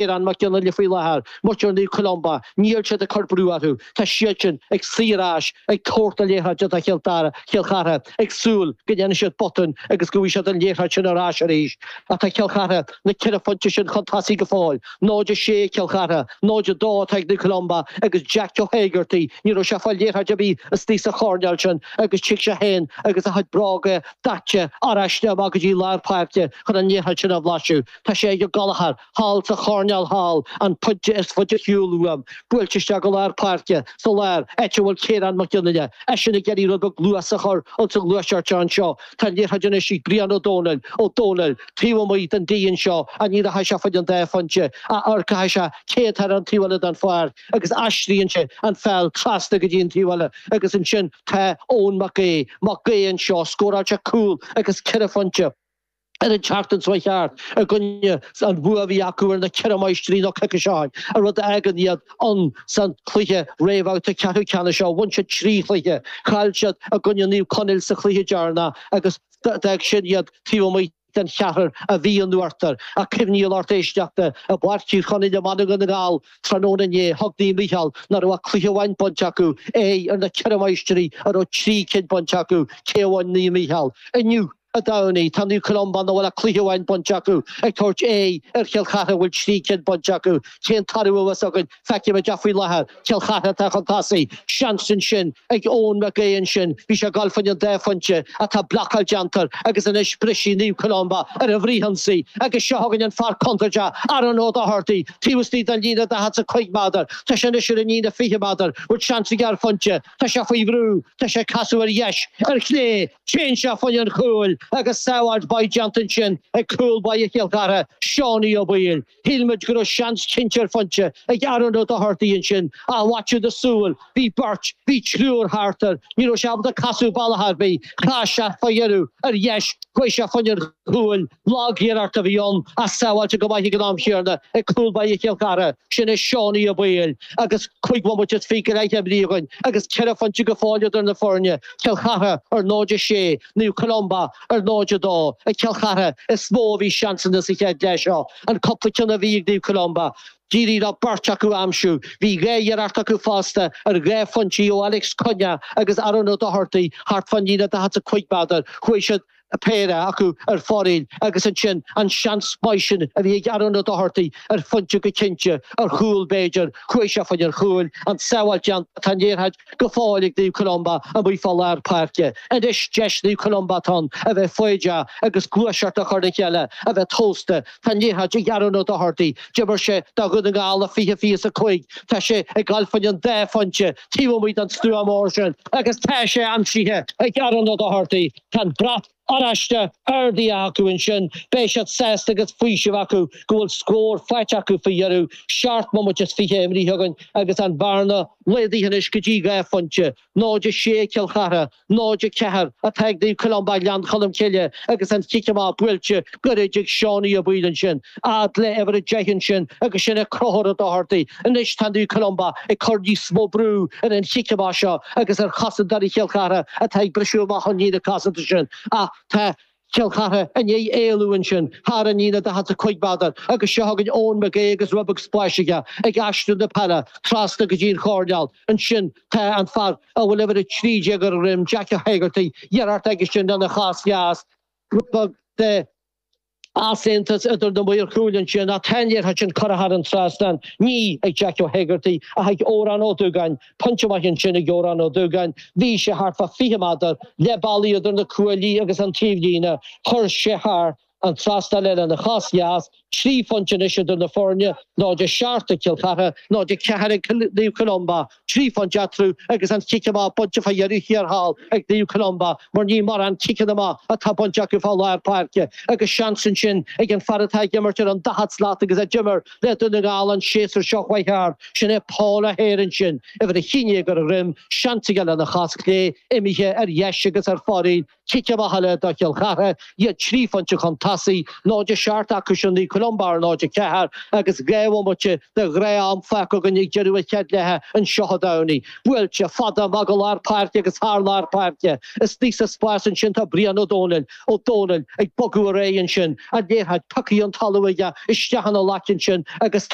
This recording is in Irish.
Ciarán Mac Fhionnghaile faoi láthair, muintir Naomh Columba, níl siad ag cur brú orthu, tá siadsan ag suí ar ais ag tabhairt na liathróide do Chill Chartha, ag súil go ndéanfaidh siad botún agus go bhfaighidh siad an liathróid sin ar ais arís. Ach tá Cill Chartha, na ceithre phointe sin chun tosaigh go fóill. 0-6 Cill Chartha, 0-2 atá ag Naomh Columba agus Jack Joe Hegarty, ní raibh sé ag fáil liathróid ar bith istigh sa choirnéal sin agus tig sé féin agus a chuid bróga daite ar ais amach go dtí lár páirce chun an liathróid sin a bhlaiseadh. Tá sé ag Ó Gallchóir. thall sa choirnéal thall, an pointe is faide ar shiúl uaim, buailte isteach go lár páirce, sa lár, áit a bhfuil Ciarán McGinley, eisean ag iarraidh rud beag luas a chur insa ghluaiseacht seo anseo, tá an liathróid anois ag Brian Ó Domhnaill, Ó Domhnaill, taobh amuigh den D anseo, á ní rachaidh sé faid an dá phointe, ach amharcfaidh sé caidé tá ar an taobh eile den pháirc agus aistríonn sé an pheil trasna go dtí an taobh eile agus ansin tá Eoin Mac Aoidh, Mac Aoidh anseo, scóráil sé cúl agus ceithre phointe. ar an tseachtain seo a chuaigh thart i gcoinne an bua a bhí acu ar na Ceithre Máistrí nó coicís ó shin, rud a fhágann iad ann san chluiche réamhbhabhta ceathrú ceannais seo. Bhain siad trí chluiche. Chaill siad i gcoinne Naomh Conaill sa chluiche deireanach agus d'fhág sin iad taobh amuigh den cheathrar a bhí in uachtar. Ach cuimhnigh, a lucht éisteachta i bPáirc Thír Chonaill i mBaile Dhún na nGall tráthnóna inné, thug Naomh Micheál nach raibh ach cluiche amháin bainte acu, aghaidh ar na Ceithre Máistrí a raibh trí cinn bainte acu, cé a bhain Naomh Micheál inniu? Dé Domhnaigh, tá Naomh Columba nach bhfuil ach cluiche amháin bainte acu ag tabhairt aghaidh ar Chill Chartha a bhfuil trí cinn bainte acu. Cén toradh a bheas againn? Feicfimid ach faoi láthair, Cill Chartha atá chun tosaigh. Seans ansin ag Eoin Mac Aoidh ansin. Bhí sé ag dul fá choinne an dá phointe ach tá blocáil déanta air agus anois brisfidh Naomh Columba ar an bhfrithionsaí agus seo chugainn an fear contúirteach Aaron Ó Dochartaigh taobh istigh den líne daichead 's a cúig méadar. Tá sé anois ar an líne fiche méadar bhfuil seans aige ar phointe. Tá sé faoi bhrú. Tá sé ag casadh ar dheis, ar chlé. Téann sé fá choinne an chúil agus sábháilt mhaith déanta ansin ag cúl báire Chill Chartha, Seánie Ó Baoill. Shíl muid go raibh seans cinnte ar phointe ag Aaron Ó Dochartaigh ansin ach bhaist sé do súil. Bhí beirt, bhí triúr thart air. Ní raibh sé ábalta casadh bealach ar bith. Chas sé fá dheireadh ar dheis, chuaigh sé fá choinne an. Cúil, lagiarracht a bhí ann ach sábháilte go maith ag an am chéarna ag cúl báire Chill Chartha, sin é Seánie Ó Baoill agus cúig bhomaite is fiche go leith imithe againn agus ceithre phointe go fóill idir na foirne, Cill Chartha ar 0-6, Naomh Columba ar 0-2. Ag Cill Chartha is mó a bhí seansanna sa chéad leath seo. An cúpla cionn a bhí ag Naomh Columba, d'éirigh leo beirt acu aimsiú. Bhí dhá iarracht acu fosta ar dhá phointe ó Alex Cunnea agus Aaron Ó Dochartaigh thart fán líne 45 méadar. Chuaigh siad. a péire acu ar fóraoil agus ansin an seans maith sin a bhí ag Aaron Ó Dochartaigh ar phointe go cinnte, ar chúl b'fhéidir, chuaigh sé fá choinne an chúil, an tsábháil déanta, tá an liathróid go fóill ag Naomh Columba amuigh fá lár páirce. Anois deis Naomh Columba atá ann a bheith foighdeach agus gluaiseacht a chur le chéile, a bheith tomhaiste. Tá an liathróid ag Aaron Ó Dochartaigh, d'imir sé do Dhún na nGall i fiche fiche is a cúig, tá sé ag goil fá choinne an dá phointe taobh amuigh don stua mór sin agus tá sé aimsithe ag Aaron Ó Dochartaigh, Tá an brat oráiste ardaithe acu ansin. Beidh siad sásta agus faoiseamh acu go bhfuil scór faighte acu faoi dheireadh. Seacht mbomaite is fiche imrithe againn agus an bhearna laghdaithe anois go dtí dhá phointe. 0-6 ag Cill Chartha, 0-4 atá ag Naomh Columba Ghleann Cholm Cille agus an chic amach buailte gairid ag Seánie Ó Baoill ansin. Fhad le uimhir a deich ansin agus sin é Conchúr Ó Dochartaigh. Anois tá Naomh Columba ag cur níos mó brú ar an chic amach seo agus ar chosantóirí Chill Chartha atá ag briseadh amach ón líne cosanta sin ach tá Cill Chartha i ndiaidh éalú ansin thar an líne 45 méadar agus seo chugainn Eoin Mac Aoidh agus rud beag spáis aige ag aistriú na peile trasna go dtí an choirneál. Ansin tá an fear a bhfuil uimhir 13 ar a dhroim, Jack Ó hÉigeartaigh, iarracht aige sin lena chos dheas, rud beag de. easaontas idir na Maoir Chúil ansin ach tá an liathróid sin curtha thar an trasnán, ní ag Jack Ó hÉigeartaigh ach ag Odhrán Ó Dúgáin, pointe maith ansin ag Odhrán Ó Dúgáin, bhí sé thart fá fiche méadar, leath bealaigh idir na cuaillí agus an taobhlíne, chuir sé thar an trasnán é lena chos dheas, trí phointe anois idir na foirne, 0-7 ag Cill Chartha, 0-4 ag Naomh Columba. Trí phointe eatarthu agus an chic amach bainte fá dheireadh thiar thall ag Naomh Columba mar ní mórán ciceanna amach atá bainte acu fá lár páirce agus seans ansin ag an fear atá ag imirt ar an daichead slat agus a d'imir le Dún na nGall an séasúr seo chuaigh thart, sin é Paul O'Hare ansin, uimhir a haon déag ar a dhroim, seans aige lena chos chlé imithe ar dheis agus ar fóraoil Cic amach eile do Chill Chartha iad trí phointe chun tosaigh, 0-7 acusan Naomh Columba ar 0-4 agus dhá bhomaite de ghnáth-am fágtha againn ag deireadh an chéad leithe anseo i dTamhnaigh. Buailte, fada, amach go lár páirce agus thar lár páirce. Is aníos sa spás ansin tá Brian Ó Dónaill, Ó Dónaill, ag bogadh ar aghaidh ansin. An liathróid pioctha ón talamh aige isteach ina ghlaic ansin agus.